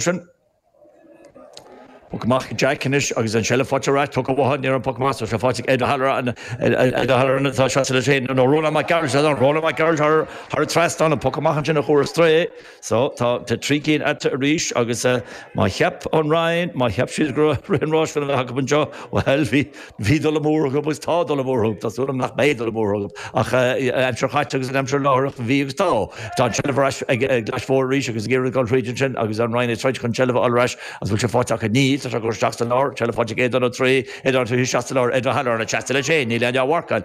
sin. Poc amach ag Jack anois agus an tseilbh faighte ar ais, tugtha uathu, ní raibh poc amach sa pháirc ag Ed O'Halloran, Ed O'Halloran atá seasta leis féin, nó Ronan McGrath, sea, Ronan McGrath thar an trasnán, an poc amach ansin a chuir ar strae é. So, tá trí cinn eatarthu arís agus má cheap an Rinn, má cheap siad go raibh rith an ráis chun a bheith acu anseo, bhuel, bhí, Bhí dul amú orthub agus tá dul amú orthub, tá súil agam nach mbeidh dul amú orthub ach an aimsir chaite agus an aimsir láithreach, bhí agus tá. Tá an tseilbh ar ais ag an gClais Mhór arís agus ag iarraidh dul thríd ansin agus an Rinn ag troid chun seilbh a fháil ar ais agus bhfuil sé faighte acu? Níl, tá Tadhg á cur isteach sa lár, seilbh faighte ag Aodán Ó Troighthe, Aodán Ó Troighthe isteach sa lár, Ed O'Halloran atá seasta leis féin, níl éinne dhá mharcáil,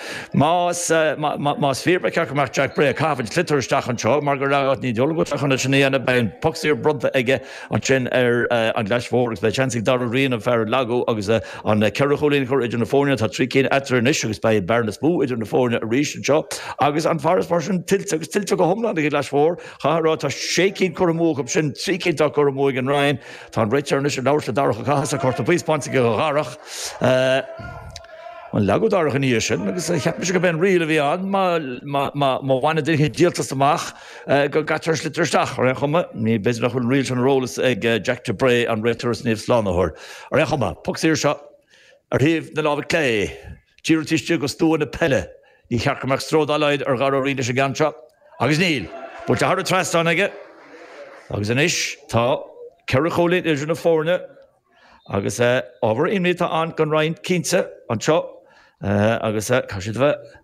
Más fíor, ba cheart go mbeadh Jack Bray ag caitheamh an tsliotair isteach anseo mar go raibh Anthony Doolin go teach chun é sin a dhéanamh. Beidh an poc saor bronnta aige ansin ar an gClais Mhór agus beidh seans ag Darragh Ryan an fear a leagadh agus an ceithre chúilín a chur idir na foirne. Tá trí cinn eatarthu anois agus beidh bearna níos mó idir na foirne arís anseo agus an farasbarr sin tuillte agus tuillte go hiomlán ag an gClais Mhór. Chaithfeá a rá, tá sé cinn curtha amú acusan, trí cinn atá curtha amú ag an Rinn. Tá an réiteoir anois ag labhairt le Darach Ó Cathasaigh, Cárta buí spáinte aige dho Dharach. Leagadh Darach ina dhiaidh sin agus cheap mise gurb é an riail a bhí ann má bhaineann duine díoltas amach go gcaitear an sliotar isteach. Ar aon chuma, b'fhéidir nach bhfuil an riail sin ar eolas ag Jack de Bray, an réiteoir as Naomh Slánaitheoir. Ar aon chuma, poc saor seo ar thaobh na láimhe clé, díreach taobh istigh de stua na peile. Níor cheart go mbeadh stró dá laghad ar Dhara Ó Riain leis an gceann seo. Agus níl. Buailte thar an trasnán aige agus anois tá ceithre chúilín idir na foirne. Agus ábhar imní atá ann don Rinn, cinnte, anseo agus tá siad a bheith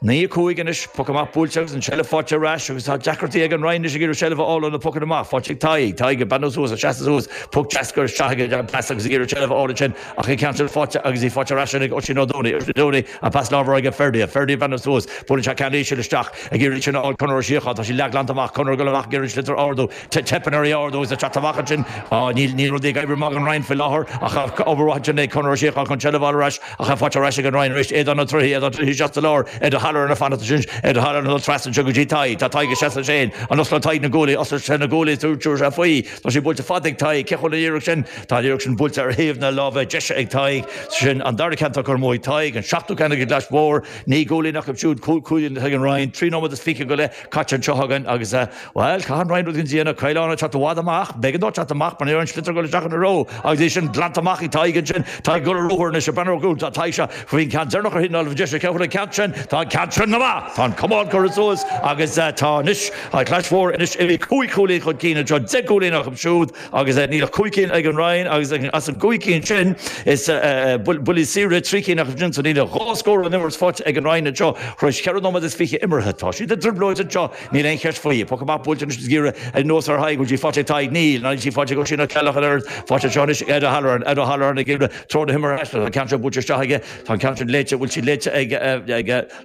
naoi a cúig anois, poc amach buailte agus an tseilbh faighte ar ais agus tá deacrachtaí ag an Rinn anois ag iarraidh seilbh a fháil ó na pocanna amach. Faighte ag Tadhg. Tadhg ag breathnú suas, ag seasamh suas, poc deas curtha isteach aige gan pas agus ag iarraidh seilbh a fháil ansin ach an ceann sin faighte agus í faighte ar ais ansin ag Oisín Ó Dónaill. Oisín Ó Dónaill ag pas láimhe chuig Ferdia. Ferdia ag breathnú suas, buaileann sé ceann íseal isteach ag iarraidh sin a fháil Conor Ó Síocháin, tá sí leathghlanta amach, Conor ag dul amach ag iarraidh an sliotar a ardú, Teipeann air í a ardú is atá amach ansin. Níl rudaí ag oibriú amach ag an Rinn faoi láthair, ach obair mhaith ansin ag Conor Ó Síocháin chun seilbh a fháil ar ais, ach é faighte ar ais ag an Rinn arís. Aodán Ó Troighthe, Aodán Ó Troighthe isteach sa lár, Ed O'Halloran ag fanacht ansin, Ed O'Halloran ag dul trasna anseo go dtí Tadhg. Tá Tadhg ag seasamh leis féin. An osclóidh Tadhg na guaillí? Osclóidh sé na guaillí is tabharfaidh sé faoi. Tá sí buailte fada ag Tadhg. Cén chaoi a bhfuil an iarraidh sin? Tá an iarraidh sin buailte ar thaobh na láimhe deise ag Tadhg. Sin an dara ceann curtha amú ag Tadhg, an seachtú ceann ag an gClais Mhór. Naoi gcúilín acu siúd, cúig chúilín ag an Rinn. Trí nóiméad is fiche go leith caite anseo againn agus. Bhuel, caithfidh an Rinn rud éigin a dhéanamh, Caolán ag teacht i bhfad amach. B'éigean dó teacht amach, mar ní raibh an sliotar ag gul isteach ina threo agus bhí sin glanta amach ag Tadhg ansin. Tadhg gul ar ruathar anois, ag breathnú suas atá Tadhg anseo. Bhí an ceann deireanach ar thaobh na láimhe deise, an ceann, an ceann sin, tá an ceann sin go maith, tá an camán curtha suas agus tá anois, tá Clais Mhór anois imithe cúig chúilín chun cinn anseo, deich gcúilín acu siúd agus níl ach cúig cinn ag an Rinn agus as an gcúig cinn sin, is buillí saora trí cinn acu sin, so níl ach dhá scór ón imirt faighte ag an Rinn anseo, thar éis cheithre nóiméad is fiche imeartha. Tá siad i dtrioblóid anseo. Níl aon cheist faoi. Poc amach buailte anois agus iarraidh ar nós ar Thadhg, bhfuil sí faighte ag Tadhg? Níl. Ná níl sí faighte ag Oisín Ó Ceallaigh ach an oiread faighte anseo anois ag Ed O'Halloran. Ed O'Halloran ag iarraidh treo na himeartha a aistriú. Tá an ceann seo buailte isteach aige. Tá an ceann sin léite. Bhfuil sí léite ag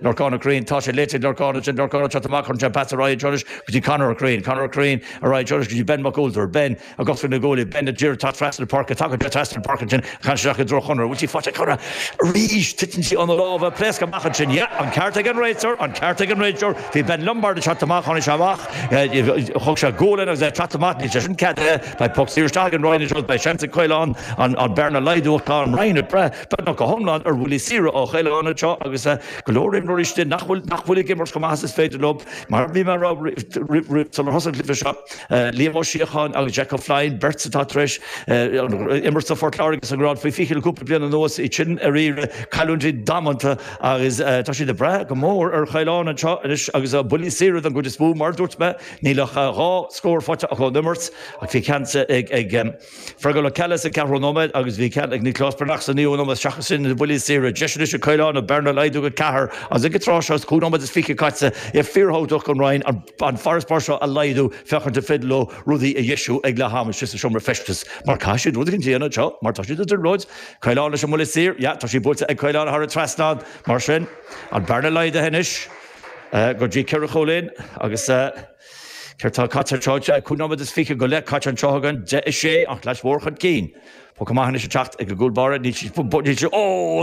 Lorcán Ó Corraoin? Tá sé léite ag Lorcán. Ansin Lorcán ag teacht amach. Cuireann sé an pas ar aghaidh anseo anois go dtí Conor Ó Corraoin. Conor Ó Corraoin ar aghaidh anseo anois go dtí Ben Mac Ualtair. Ben. Agus Ben na Guaille, beidh an liathróid tagtha trasna na páirce, tagtha te trasna na páirce ansin, ag caint isteach i dtreo Chonaire, An bhfuil sí faighte ag Conaire arís? Titeann sí óna lámha, pléascadh amach ansin, Yeah, an ceart ag an réiteoir, an ceart ag an réiteoir, bhí Ben Lombard ag teacht amach, tháinig sé amach, thug sé gualainn agus é ag teacht amach, níl sé sin ceadaithe, beidh poc saor isteach ag an Rinn anseo, beidh seans ag Caolán an bearna a laghdú ach tá an Rinn ag brath, beagnach go hiomlán, ar bhuillí saora ó Chaolán anseo agus go leor imreoirí istigh nach bhfuil ag imirt chomh maith is is féidir leo, mar a bhí mé a rá sular thosaigh an cluiche seo. Liam Ó Síocháin agus Jack O'Flynn, beirt atá tar éis imirt do Phort Láirge sa ngrád faoi 20 le cúpla bliain anuas, iad sin ar iarraidh, cailliúintí damanta agus tá siad ag brath go mór ar Chaolán anseo anois agus a bhuillí saora don gcuid is mó. Mar a dúirt mé, níl ach dhá scór faighte acu ón imirt ach bhí ceann ag. Fearghal Ó Ceallaigh sa ceathrú nóiméad, agus bhí ceann ag Nioclás Breathnach sa naoú nóiméad seachas sin ina bhuillí saora. Deis anois ag Caolán an bhearna a laghdú go ceathair agus ag an tráth seo is cúig nóiméad is fiche caite é fíorthábhachtach don Rinn an farasbarr seo a laghdú féachaint an féidir leo rudaí a dheisiú ag leath ama istigh sa seomra feistis mar caithfidh siad rud éigin a dhéanamh anseo mar tá siad i dtrioblóid Caolán leis an mbuille saor yeah tá sí buailte ag Caolán thar an trasnán mar sin an bearna laghdaithe anois go dtí ceithre chúilín agus Céard tá caite an tráth seo? Cúig nóiméad is fiche go leith caite an tráth seo againn, deich a sé, ach Lios Mór chun cinn. Poc amach anois ag teacht ag an gcúl báire, níl siad, níl siad, oh!